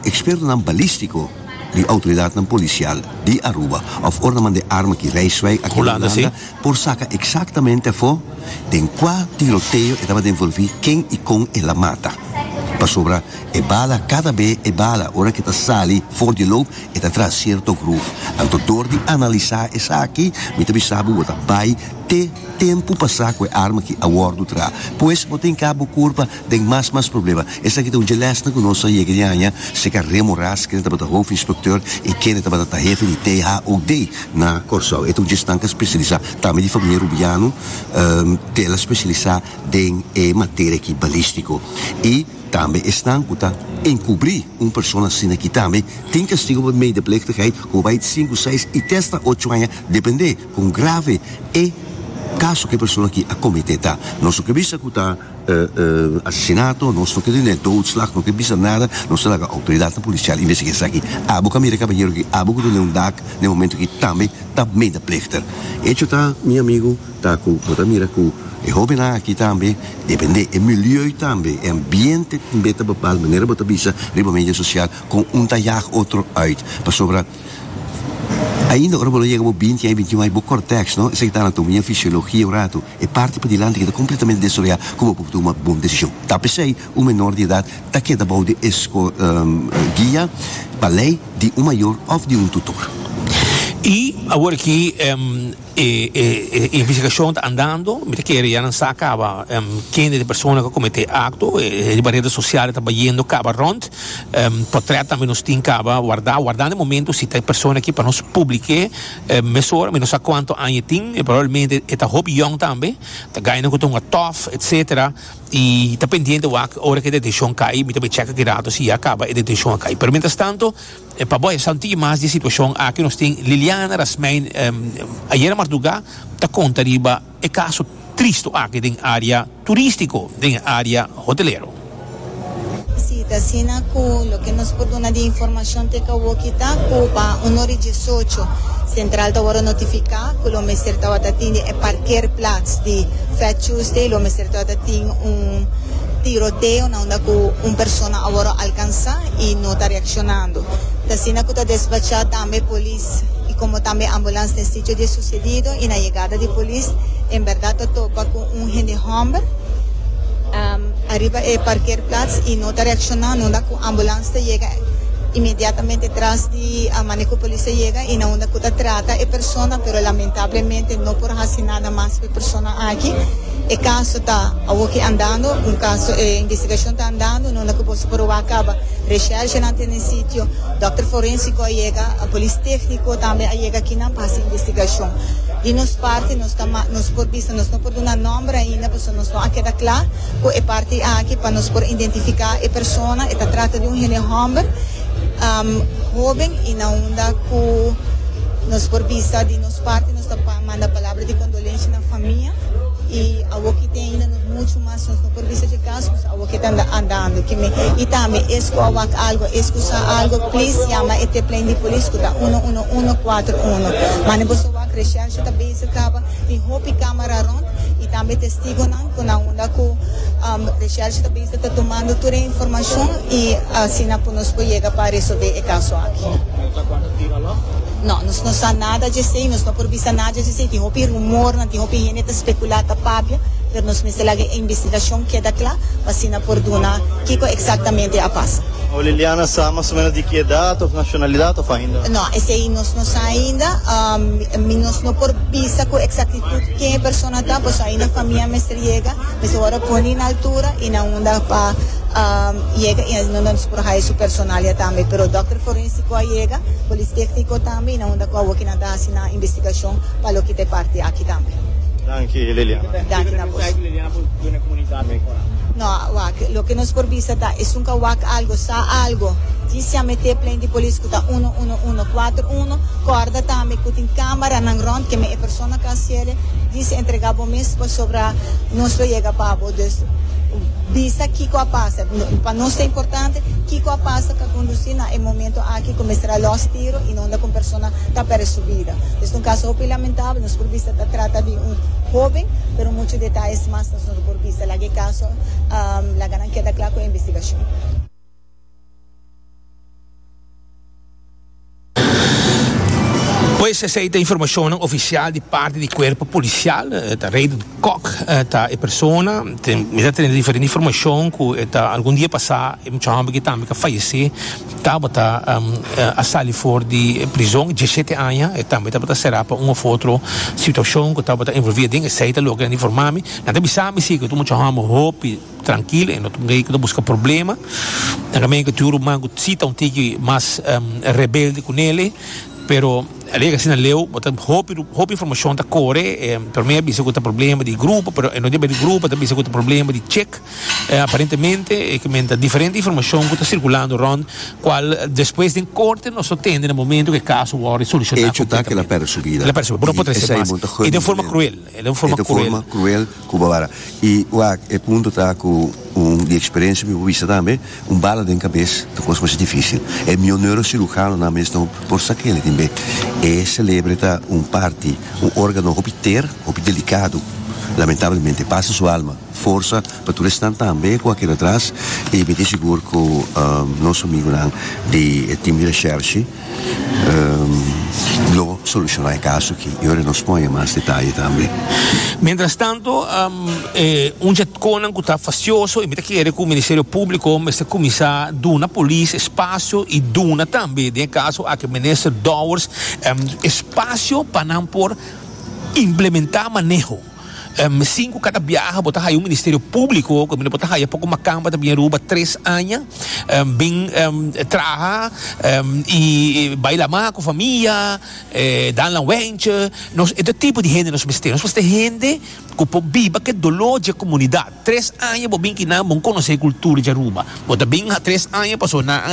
ekspertonan balístiko di outoridatnan polisial di Aruba òf ora nan manda e arma ki Rijswijk aki na Hulanda, por saca exactamente afo den cua tiroteo e tabatin envolvi, ken y con el a mata. Pasobra e bala, cada be e bala ora ke ta sali for di loop e ta traha cierto groef. Anto door di analiza esaki mi ta bisa bo bo ta bay te tempo pasa cu e arma ki a wordo traha. Pues bo tin ca bo curpa den mas mas problema. Esaki ta un dje lèsnan ku nos a yega di haña seka Remo Ras, kende tabata hoofdinspecteur i kende tabata tahefe di THOD na Kòrsou. E ta un dje stanka spesialisá tambe di famia Rubiano, tela spesialisá den e materia aki balístiko. I tambe esnan ku ta enkubrí un persona asina ki tambe tin kastigo pa medeplichtigheid ku bai di sinku, seis i testa ocho haña dependé kon grave e kaso ku e persona aki a kometé ta. Nos lo ke bisa ku ta. asesinato, nos no ke tene doodslag, no ke bisa nada, nos ta laga outoridatnan polisial investigá esaki. Abo ka mira kabahero aki, abo ku ta den un dak na e momento aki tambe ta medeplichter. Hecho ta, mi amigu, ta ku bo ta mira ku e hóbennan aki tambe, dependé e milieu tambe, e ambiente tambe ta bepal manera bo ta bisa riba medio sosial kon un ta yag otro uit. Pasobra ainda ora bo lo yega bo binti ai, bintiún ai, bo kòrtèks, no? Esaki ta anatomiafisiologia un ratu. E parti padilanti keda kompletamente destroyá ku bo por tuma bon desishon. Ta p'esei un menor di edat ta keda bou di e guia, pa lei, di un mayor òf di un tutor. I awor aki e investigashon ta andando, mi ta kere ya nan sa kaba kende di e persona ku kometé e akto. E riba rede sosial e ta bayendo kaba rònt. Pòtrèt tambe nos tin kaba wardá, wardando e momentu si ta e persona aki pa nos publik'é. Mesun ora mi no sa cuanto aña e tin, e probablemente e ta hopi yong tambe, ta gaina cu ta hunga tof, etc. Y ta pendiente wak ora cu e deteccion cay, mi ta bay checa kirato si ya caba e deteccion a cay. Pero mientras tanto, pa boya sa un tikje mas di e situacion aki nos tin Liliana Rasmijn, ayer mardugá ta conta riba. e kaso tristu aki den área turístiko, den e área hotelero. Si ta asina ku loke nos por duna di informashon te Kawoki ta ku pa un ora i diesocho Sentral ta wòrdu notifiká ku lo mester tabata tin den e parkeerplats di Fat Tuesday lo mester tabata tin un tiroteo na unda ku un persona a wòrdu alkansá i no ta reakshonando. Ta asina ku ta desbachá tambe. Polis y como tambe ambulance den sitio di e sucedido y na yegada di polis en berdad ta topa cu un hende homber ariba e parkeerplaats y no ta reacciona nunda cu ambulance ta yega inmediatamente tras di mane cu polis a yega y na unda cu ta trata e persona pero lamentablemente no por haci nada mas pa e persona aki e caso ta awoki andando un caso e investigacion ta andando nunda cu boso por wak caba reshergenan ta den sitio Dòkter forensiko a yega, polis tékniko tambe a yega akinan pa hasi investigashon. Di nos parti nos ta ma nos por bisa nos no por duna nòmber ainda pasobra nos no a keda kla ku e parti aki pa nos por identifiká e persona. E ta trata di un hende hòmber hoben i na unda ku nos por bisa di nos parti nos ta manda palabra di kondolensha na famia i awokitin ainda muchu mas nos no por bisa dje kas. Ke ta anda andando ki mi. Y tambe es cu a wak algo, es cu sa algo, please yama e teplein di polis cu ta uno uno uno cuatro uno. Mane boso wak resherche ta bezig caba tin hopi camera rond y tambe testigonan cu nan unda cu resherche ta bezig ta tumando tur e informacion y asina pu nos por yega pa resolve e caso aki. No, nos no sa nada djesei, nos no por bisa nada djesei, tin hopi rumornan, tin hopi hende ta spekulá, ta papia, pero nos mester laga e investigashon keda kla pa asina por duna kiko eksaktamente a pasa. Awo Liliana sa mas o ménos di ki edat òf nashonalidat òf ainda? No, esei nos no sa ainda, mi nos no por bisa ku eksaktitut ken e persona ta, pasobra ainda famia mester yega, mester wòrdu puni na altura i na unda pa yega i asina nos por haya su personalia tambe, pero dòkter forénsiko. Cu a yega, Polis Tecnico tambe y nan unda cu awo kinan ta haci nan investigacion pa loke ta e parti aki tambe. Danki Liliana. Danki na bos. No, wak, loke nos por bisa ta esun cu a wak algo, sa algo, di si a mete plen di polis cu ta uno, uno, uno, cuater, uno, corda tambe cu tin camera nan rond, keme e persona cu a haci ele, di si entrega bo mes pasobra nos lo yega pa bo. Dus, bisa kiko a pasa. Pa nos ta importante kiko a pasa ka kondusí na e momento aki ku mester a lòs tiro i nonda ku un persona ta pèrdè su bida. Es ta un kaso hopi lamentabel. Nos por bisa ta trata di un hoben, pero muchu detayes mas nos no lo por bisa. Laga e kaso, laga nan keda kla ku e investigashon. Pues esey ta informacionnan oficial di parti di cuerpo policial. E ta Reidert Kok e ta e persona. Ten, mi ta tene diferente informacion cu e ta algun dia pasa e mucha homber ki tambe a fayece tabata um a sali for di e prison diesisiete aña. E tambe tabata sera pa un of otro situacion cu tabata envolvia den esey ta loke nan informa mi. Nan ta bisa mi si cu ta mucha homber hopi. Trankil, e no ta un rei ku ta buska problema. Nan kaminda ku tur ruman ku si ta un tiki mas rebelde ku nele, pero al yega asina leu bo ta hopi hopi informashon ta kore, pero mi a bisa ku ta problema di grupo, pero e no debe di grupo, mi ta bisa ku ta problema di chek, aparentemente e kumenta diferente informashon ku ta sirkulando rònt kual despues den korte nos lo tende na momentu ku e kaso wòrdu solushoná. Hecho ta ku el a pèrdè su bida i esei bon ta hurta mi tambe. E ta un forma cruel cu Barbara. Y wak, e punto ta cu un di experiencia mi por bisa tambe, un bala den cabes ta un cos masha dificil. E miyo neurocirujanonan mes no por sa kende tin be. E celebre ta un parti, un organo hopi ter, hopi delicado. Lamentablemente pasa su alma. Forsa pa tur esnan tambe cu a keda atras y mi tin sigur cu nos amigunan di e team di Reschershi, lo soluciona e caso aki y ora nos pone mas detaye tambe. Mientras tanto, e un JETCOnan cu ta facioso, e mi ta kere cu Ministerio Publico mester cuminsa duna polis espacio y duna tambe, den e caso aki Minister Dowers, espacio pa nan por implementa maneho. Sin cu cada biaha bo ta haya un ministerio publico cu bo ta haya poco makan pa ta bini Aruba tres aña bin traha y bay la ma cu famia danla wentsje nos e ta tipo di hende nos mester nos mester hende cu por biba ke dolor dje comunidad tres aña bo bin kinan bo conoce e cultura dje Aruba bo ta bin tres aña pasobra nan a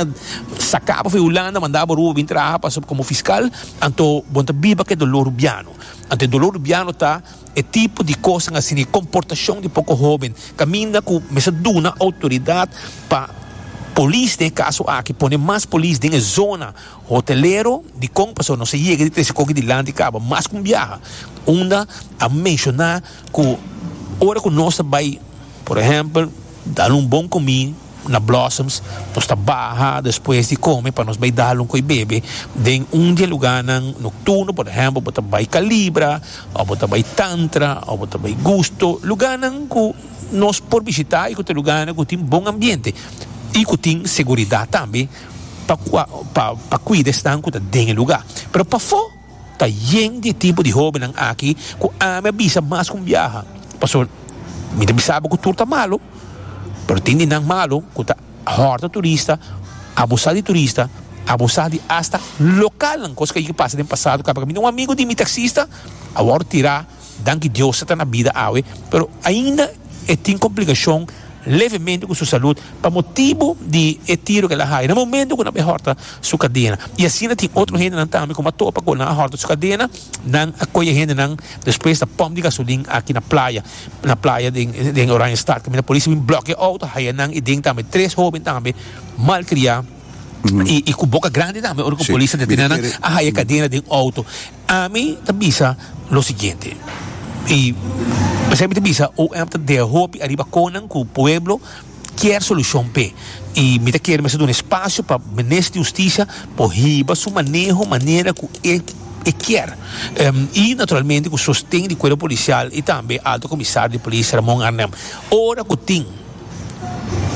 sacabo fu Hulanda manda bo Aruba bin traha pasobra como fiscal anto bo ta biba ke dolor Rubiano. Ante dolor di biano ta e tipo di kosanan asina, e komportashon di poko hóben kaminda ku mester a duna outoridat pa polis den e kaso aki, pone mas polis den e zona hotelero dikon pasobra nos a yega di trese koke dilanti kaba mas ku un biaha unda a menshoná ku ora ku nos ta bai por ehèmpel dal un bon komí. na Blossoms nos ta baha despues di come pa nos bay dal un coy bebe den un di e lugarnan nocturno por ehempel bo ta bay Calibra o bo ta bay Tantra o bo ta bay Gusto lugarnan cu nos por bishita y cu ta lugarnan cu tin bon ambiente y cu tin seguridad tambe pa pa cuida esnan cu ta den e lugar pero pafo. Ta yen di e timpo di hobennan aki ku ami a bisa mas ku un biaha. Pasobra mi ta bisa bo ku tur ta malu, pero tin di nan malu ku ta hòrta turista, abusá di turista, abusá di asta lokalnan, kos ku a yega pasa den pasado kaminda un amigu di mi taksista a wòrdu tirá. Danki Dios e ta na bida awe, pero ainda e tin komplikashon levemente ku su salud pa motibu di e tiro ku el a haya na momento ku nan bai hòrta su kadena. I asina tin otro hendenan tambe ku mi a topa ku nan a hòrta su kadena, nan a koyo e hendenan despues na pòmp di gasolin aki na playa, na playa den Oranjestad kaminda polis a bin blòkiá e outo, haya nan i den tambe tres hóben tambe malkriá i ku boka grandi tambe ora ku polis a detenénan a haya kadena den outo. Ami ta bisa lo siguiente, y esei mi ta bisa OM ta dega hopi ariba conan cu pueblo kier solucion p'e, y mi ta kere mester duna espacio pa Minister di Husticia por hiba su maneho manera cu e e kier, y naturalmente cu sosten di Cuerpo Policial y tambe Alto Comisario di Polis Ramon Arnel, ora cu tin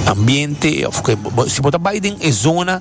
ambiente of si bo ta bay den e zona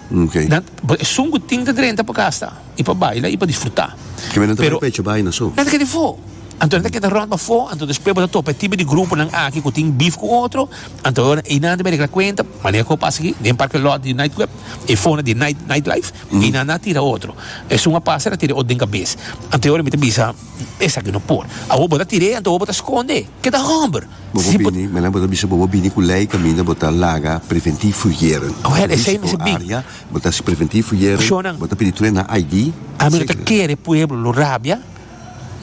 Nan por esun ku tin ta drenta pa gasta i pa baila i pa disfrutá. Pero nan ta keda bafó. Anto nan ta keda rònt bafó, anto despues bo ta topa e tipo di gruponan aki ku tin bif ku otro, anto awor einan debe regla kuenta, manera ku a pasa aki den parke lòt di Nightclub, e fona di Night Nightlife, einan nan a tira otro. Esun a pasa nan a tira e otro den kabes. Anto awor mi ta bisa esaki no por. Awor bo ta tir'é, anto awor bo ta skond'é. Keda hòmber! Si bo bini, menan bo ta bisa bobo bini ku lei kaminda bo ta laga preventief fujeren. Go ahead, esei mester bin. Area, bo ta hasi preventief fujeren. Personan. Bo ta pidi tren na ID. Ami no ta kere pueblo lo rabia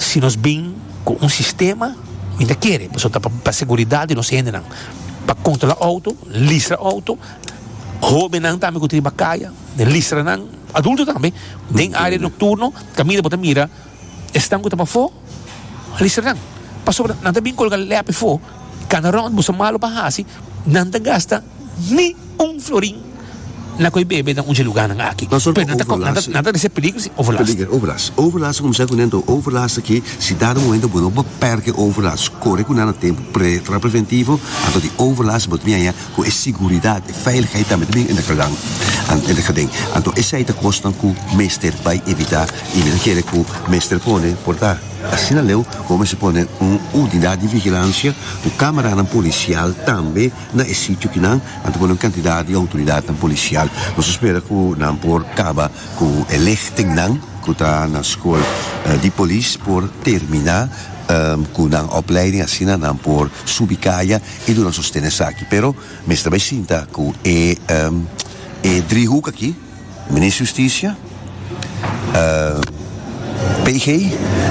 si nos bin ku un sistema, mi ta kere, pasobra ta pa seguridat di nos hendenan, pa kontrolá outo, listra outo, hóbennan tambe ku ta riba kaya, listra nan, adulto tambe, den area nokturno kaminda bo ta mira. Esnan ku ta pafó, listernan, pasobra nan ta bin kolga lèp efó, i kada rònt boso malu pa hasi, nan ta gasta ni un florin na koe bebe den un dje lugánan aki. P'esei nan ta resé peligro si overlast. Overlast ta kuminsá ku nan ta un overlast aki, si dado momento bo no por pèrdè overlast, kore ku nan a tempu, tra preventivo, anto di overlast bo ta bin ayá. Cu e siguridad, e veiligheid tambe ta bien in de gelang, in de geden. Anto esey ta cosnan cu mester bay evita y mi ta kere cu mester pone, por ta asina leu, cu bo mester pone un unidad di vigilancia cu camaranan policial tambe na e sitio ki nan, nan ta pone un cantidad di autoridadnan policial. Nos a spera cu nan por caba cu e lichten nan cu ta na school di polis por termina cu nan opleiding asina nan por subi caya. E duna sosten esaki, pero mester bai sinta ku e e driehoek aki, Minister Justicia, PG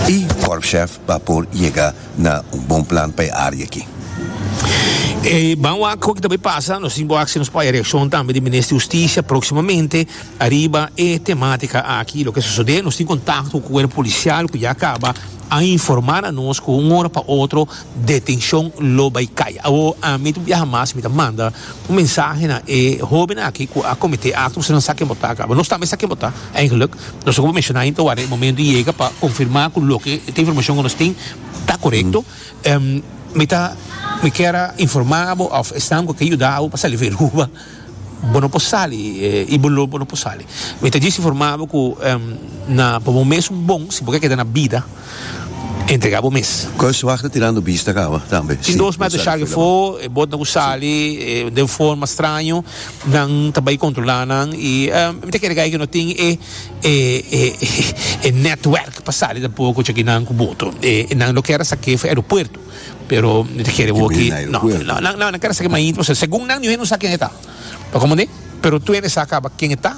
i Korpschef pa por yega na un bon plan pa e área aki. E ban wak ku aki ta bai pasa, nos tin ku wak si nos paya reakshon tambe di Minister Justicia próksimamente ariba e temátika aki. Loke sosodé, nos tin kontakto ku kuerpo polisial ku ya kaba a informá na nos ku un ora pa otro, Detenshon lo bai kaya. Awor ami ta biaha mas, mi ta manda un mensahe na e hobennan aki ku a komete akto ku asina sa ken bo ta. Bo no tambe sa ken bo ta, eigenlik. Nos loke bo menshoná hinter wak e momento yega pa konfirmá ku loke e informashon ku nos tin ta korekto. Mi ta, mi kier a informá bo òf esnan ku a ke yuda bo pa sali veruba. Bo no por sali i bo lo bo no por sali. Mi ta disi forma bo ku na pa bo mes un bon si bo ke keda na bida entregá bo mes. Kòrswag ta tirando bista kaba tambe. Tin dos mèt oshak efo e bòt nan ku sali den forma straño nan ta bai kontrolá nan i mi ta kere ka e ke no tin e e nètwèrk pa sali tampoco cha kinan ku boto e nan lo kèr a sak'é for aeropuerto. Pero mi ta kere bo aki. No, no, nan, nan kere sa ki mas intimo. So, segun nan, niuhen no sa ken e ta. Pa komprendé? Pero tur hende sa kaba ken e ta.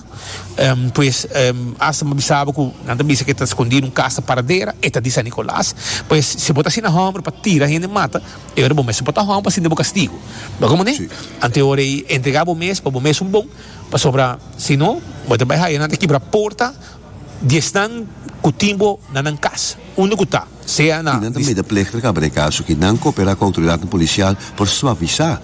Um, pues, um, asta mi a bisa bo ku nan ta bisa ku e ta skondí den un kas ta paradera. E ta di San Nicolas. Pues, si bo ta asina hòmber pa tira hende mata, e ora bo mes bo ta hòmber pa sinti bo kastigu. Bo komprendé? Anto e ora ei, entregá bo mes pa bo mes un bon, pasobra si no, bo ta bai haya nan ta kibra porta. Di esnan ku tin bo na nan kas, unda ku ta, sea na. I nan ta medepleg'ter kaba den kaso ki nan kooperá ku outoridatnan polisial por suavisá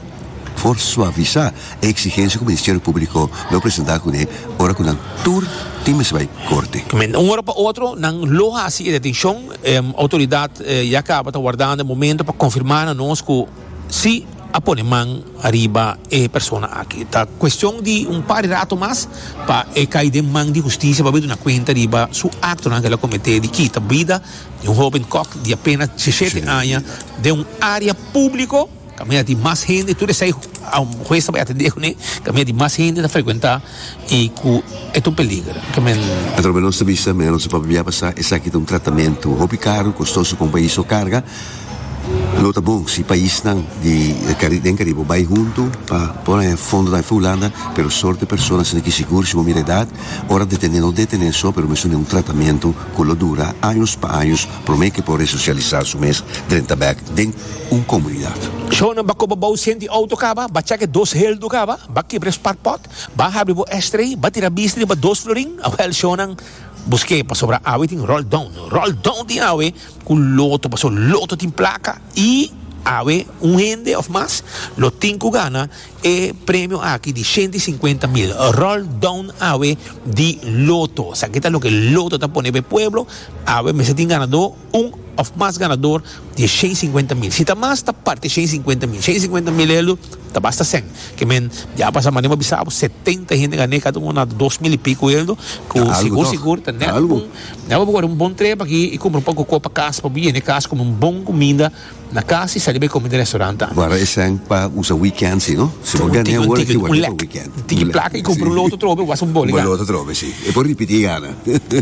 por suavisá e eksigensia ku Ministerio Públiko lo presentá kuné ora ku nan tur tin mester bai korte. Kmen, un ora pa otro nan lo hasi e detenshon. E outoridat ya kaba ta wardando e momentu pa konfirmá na nos ku. Si a pone man ariba e persona aki, ta cuestion di un par di rato mas pa e cay den man di husticia pa bay duna cuenta riba su actonan cu el a comete di kita bida di un hoben kok di apenas diecisiete aña den un area publico ca mira tin mas hende tur esai hues ta bay atende cu ne ca mira tin mas hende ta frecuenta. y cu e ta un peligro, ta men. Patronan di nos ta bishita men nos a papia pasá esaki ta un tratamentu hopi karu, kostoso pa un pais so karga. Lo ta bon si paisnan di den Karibe bai huntu pa por haña fondonan afí Hulanda, pero sorte persona asina ki sigur si bo mira edat, ora detené no detené so pero mesun den un tratamentu cu lo dura años pa años Promé ke por resosialisá su mes drenta bèk den un komunidat. Shownan ba koba bou sien di outo kaba, ba chèk e dos heldu kaba, ba kibra e spark pòt, ba habri bo ashtray, ba tira bisti riba dos florin, awèl shownan busk'é pasobra awe tin roll down, roll down tin awe ku loto paso loto tin plaka i awe un hende òf mas lo tin ku gana E premio aki di shente i sinkuenta mil ròl dòun awe di loto. Sa aki ta loke loto ta pone pa e pueblo. Awe mester tin ganadó un òf mas ganador di e shen i sinkuenta mil. Si ta mas ta parti e shen i sinkuenta mil. Shen i sinkuenta mil elu ta basta sèn. Ke men dje a pasa manera bo a bisa bo setenta hende gan'é kada unu na dos mil i piku elu ku sigur sigur ta nèt un. Dje bo por kore un bon treba aki i kumpra un poko koko pa kas pa bo yena e kas kume un bon kuminda. Na cas y sali bay comida restaurant tambe. Guara e send pa usa weekend si no? Si bo gana e ora ki wordo pa weekend. Un tiki placa y compra un loto trobe y wasa un boli gana. Un boli loto trobe si. E por ripiti e gana.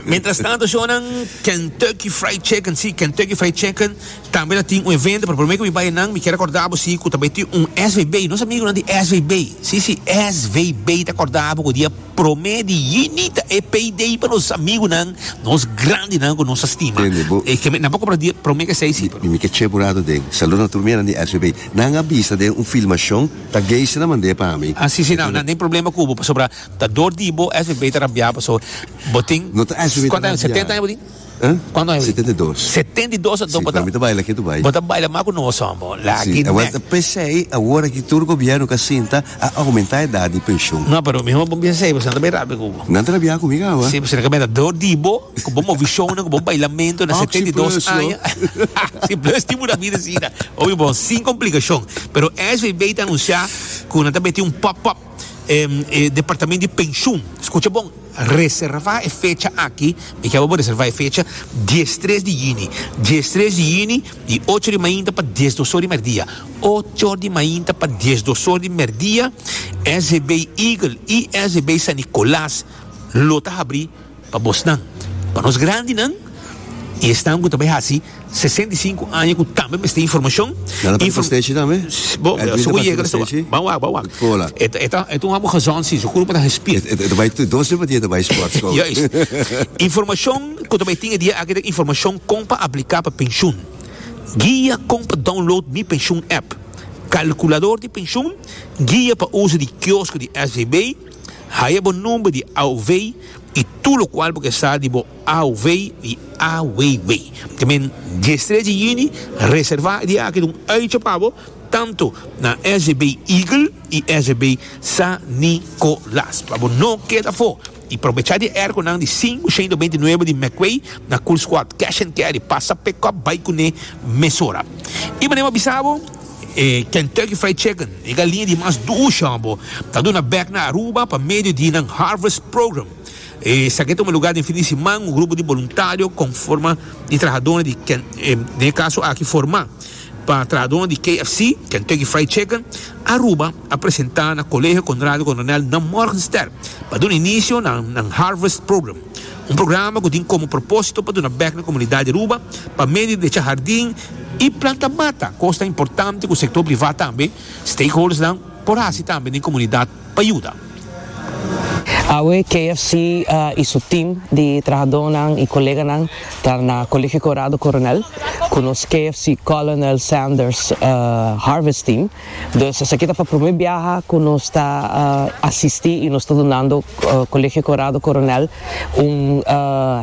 Mientras tanto shownan Kentucky Fried Chicken si Kentucky Fried Chicken tambe ta tin un evento pero prome cu mi bay nan mi kier a corda bo si cu ta bay tin un SVB nos amigonan di SVB si si SVB ta corda bo cu dia Promé di juni ta e payday pa nos amigunan, nos grandinan ku nos a stima. Tende bo. E kende nan por kompra dia promé ke seis, si pero. Mi mi ke cheburado den. Saludo na tur miembro di SBB. Nan a bisa den un filmashon ta Geisha na mand'é pa mi. Ah si si nan nan tin problema ku bo pasobra ta dor di bo SBB ta rambiá pasobra bo tin. No ta SBB ta rambiá. Kuantu aña? Setenta aña bo tin? Cuantu aña bo tin? Setenta i dos. Setenta i dos anto bo ta. Si, cuando mi ta baila, ke tu bai? Bo ta baila mas cu nos homi bo. Laki nek. Si, ta pesey awor aki tur gobierno ka sinta a aumenta edad di pension. No, pero mi homi bo pesey bo, si nan ta bay rabia cu bo. Nan ta rabia cu mi caba? Si, si nan ka bay rabia do di bo, cu bo movi shownan, cu bo bailamento na setenta i dos aña. Si, plus tin pura bida asina. Oye bo, sin complicacion. Pero SVB ta anuncia cu nan ta meti un pop-up. E departamento di penshun, skucha bon, reservá e fecha aki, mi kere bo bo reservá e fecha, dies tres di yini, dies tres di yini di ocho di mainta pa dies dosor di mèrdia, ocho di mainta pa dies dosor di mèrdia, SEB Eagle i SEB San Nicolas lo ta habrí. Pa bosnan, pa nos grandinan i esnan ku ta bai hasi sesenta i sinku aña ku tambe mester informashon, informashon ku ta bai tin e dia aki ta informashon kon pa apliká pa penshun, guia kon pa download Mi Pensioen app, kalkulador di penshun, guia pa uso di kiosko di SVB, Haya bo number di AOV y tur locual bo ke sa di bo AOV y AWW. Te men dies strechi y yini reserva e dia aki dun uitje pa bo tanto na SGB Eagle y SGB San Nicolas pa bo no keda for y probecha di e airco nan di cinco ciento veinte y nueve di McQuay na Cool Squad Cash and Carry pasa pick up bay cune mesora y manera bo bisa bo E Kentucky Fried Chicken, e galinha di mas duur shambo, ta duna bek na Aruba pa medio di nan Harvest Program. Esaki a tuma lugar den fin di siman. Un grupo di boluntario conforma di trahadornan di den e caso aki forma pa trahadornan di KFC, Kentucky Fried Chicken, Aruba a presenta na Colegio Conrado Coronel na Morgenstern pa duna inicio na nan Harvest Program. Un programa cu tin como propósito pa duna bek na comunidad di Aruba pa medio di echa hardin y planta mata, cos tan importante cu sector privat tambe, stakeholders nan, por haci tambe den comunidad pa yuda. Awe KFC y su team di trahadonan y coleganan ta na Colegio Corado Coronel cu nos KFC Colonel Sanders Harvest Team. Dus esaki ta pa prome biaha ku nos ta asistí i nos ta dunando Kolegio Konrado Koronèl un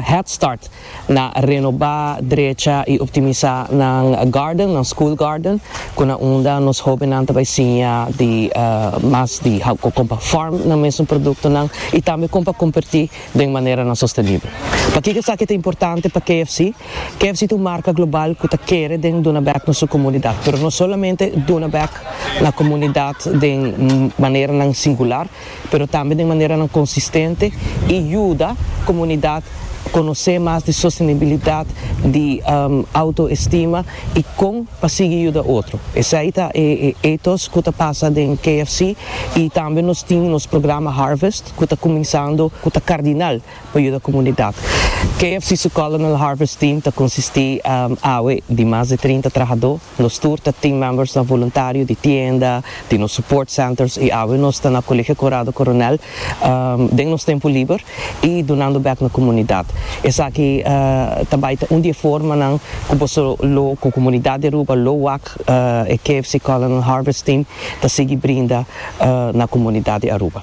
head start na renobá, drecha i optimisá nan garden, nan school garden, ku na unda nos hóbennan ta bai siña di mas di how ku kompa farm nan mesun produktonan i tambe kon pa kompertí. den manera na sostenibel. Pakiko esaki ta importante pa KFC? KFC ta un marka global ku ta kere den duna bek na su komunidat, pero no solamente duna bek na komunidat den maneranan singular, pero tambe den maneranan konsistente i yuda komunidat konosé mas di sostenibilidat, di outoestima i kon pa sigui yuda otro. Esei ta e ethos ku ta pasa den KFC i tambe nos tin nos programa Harvest. ku ta kuminsando ku ta kardinal pa yuda komunidat. KFC su Culinal Harvest Team ta konsistí awe di mas di trinta trahadó. Nos tur ta team members na voluntario di tienda, di nos support centers i awe nos ta na Colegio Conrado Coronel den nos tempu liber i dunando bèk na komunidat. Esaki ta bai ta un di e formanan ku boso lo ku komunidat di Aruba lo wak e KFC Culinal Harvest Team ta sigui brinda na komunidat di Aruba.